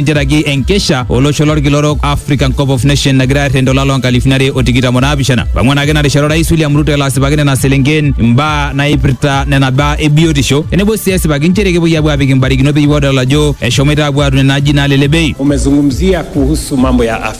tenteraki enkesha olosho lorkila orok African Cup of Nation nagira airrend olala onkalifuni are o tikitam o naapishana. Pang'uan ake ina rishata Orais William Ruto elo asipaki nena selenken imbaa naipirta nena baa e biotisho tenebo sii esipaki nchere kepuoi aapuo aapik imbarikino peyie edol ajo eshomoita aapuo aatum nena ajijik naalelek bei. Umezungumzia kuhusu mambo ya afya.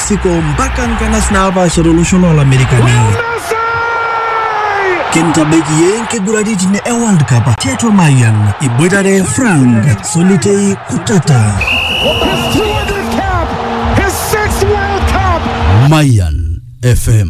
mexico mpaka nkanas naapaasha tolosho loolamerikani kintabaiki yie nkiguraritin e world cup tiatua mayian iboitare frank solitei kutata Mayan FM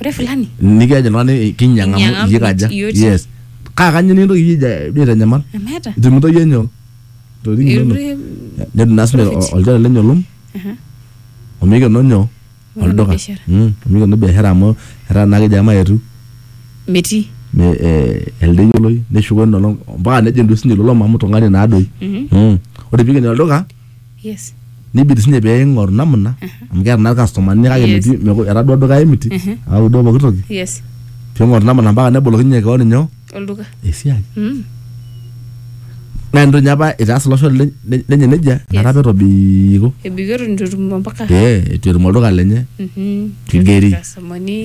ore fulani nikiaje oltung'ani kinyiang'a Kinyiang'a amu iyie amu kaja iyie otii. yes kaa kanyio nikintoki iyie aija- duo aitanyamal emeeta itumito iyie nyoo ntokitin inonok Irure- netum naa sinye Profit. ol- olchore lenye olom Aha. omikeno nyoo Omikeno olduka biashara. Mm, omikeno biashara amu etaa naa kejo emayetu metii me- eh, elde yioloi neshuko ina olong mpaka nejing duo sinye ilo lom amu tung'ani naadoi Mhm. Mm. ore piikeni olduka Yes. nibidi sinye pee ing'oru namna amu keeta naa irkastomani kake Yes. metii meku- etadua duka emiti au duo pooki toki Yes. pee ing'oru namna mpaka nebolokinye keon inyoo Olduka. esiai Mm. naa entoki ninye apa itaas iloshon le- le- lenye nejia Yes. inakata apa etobiko Ebikito nitu etum mpaka. pee etu etum olduka lenye Mhm. Kigeri. Irkastomani.